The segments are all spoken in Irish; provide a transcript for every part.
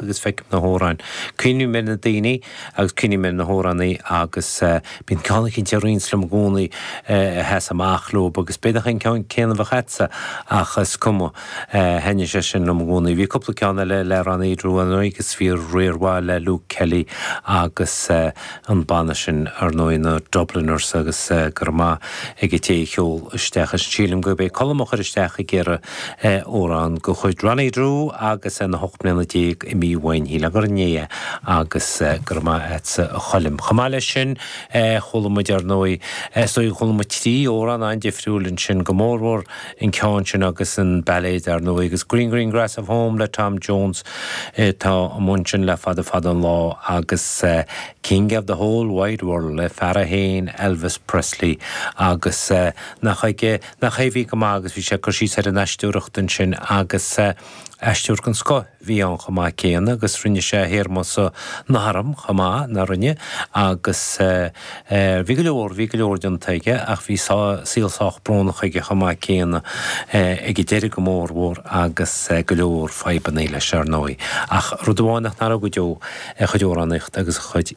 agus feicim na hamhráin. Cuimhním ar na daoine agus cuimhním ar na hamhránaithe agus bíonn ceann eicínt a ritheanns liom i gcónaí a sheas amach leob agus b'fhéidir an ceann céanna a bheadh agatsa ach is cuma, thaitin sé sin liom i gcónaí. Bhí cúpla ceann eile le Ronnie Drew ann agus bhí riar mhaith le Luke Kelly agus an banna sin ar ndóigh, na Dubliners agus go raibh maith ag an té a sheol isteach ansin. Sílim gurb é Colm a chuir isteach ag iarraidh. Amhrán de chuid Ronnie Drew agus é na hocht mbliana déag imithe uainn sílim gur inné é agus go raibh maith a'dsa a Choilm. Chomh maith leis sin chuala muid ar ndóigh, is dóigh gur chuala muid trí amhrán an-difriúil ansin, go mórmhór an ceann sin agus an bailéad ar ndóigh agus Green Green Grass of Home le Tom Jones atá amuigh ansin le fada fada an lá agus King of the Whole Wide World le fear é féin Elvis Presley agus nach ag Nach hé a bhí go maith agus bhí sé ag cur síos ar an aisteoireacht ansin agus aisteoir den scoth a bhí ann chomh maith céanna agus rinne sé a théarma san arm chomh maith, nach rinne? Agus bhí go leor, bhí go leor déanta aige ach bhí saol sách brónach aige chomh maith céanna ag an deireadh go mórmhór agus go leor fadhbanna leis, ar ndóigh. Ach rud amháin nach n-athróidh go deo, a chuid amhránaíochta agus a chuid.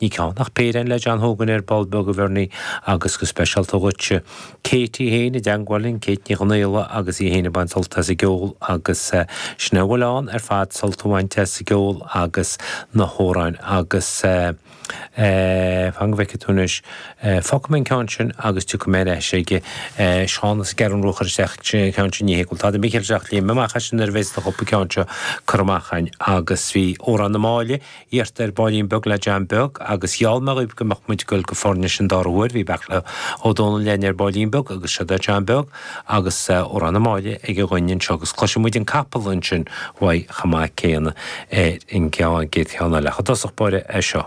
Ní ceann ach péire le John Hogan ar ball beag a Bhernie agus go speisialta dhuitse. Kate í fhéin i dteangmháil linn, Kate Ní Chonaola agus í fhéin ag baint sult as an gceol agus sin é a bhfuil ann ar fad, sult a bhaint as an gceol agus na hamhráin agus eh. fan go bhfeicfidh tú anois, fágfaidh mé an ceann sin agus tiocfaidh mé ar ais ag eh. Seán is gearr an ruathar isteach an ceann sin, ní hé go bhfuil tada mícheart ag teacht, léim amach as sin nuair a bhéas an cúpla ceann seo curtha amach againn agus bhí Amhrán na Máille, iarrtha ar baillín beag le John Beag agus gheall mé dhaoibh go mbeadh muid ag dul go Foirnis an dara huair, bhí Beairtle Ó Domhnaill linn ar baillín beag agus seo é John Beag agus Amhrán na Máille aige dhúinn anseo agus cloisfidh muid an capall ansin uaidh chomh maith céanna ar an gcéad cheann eile ach i dtosach báire é seo.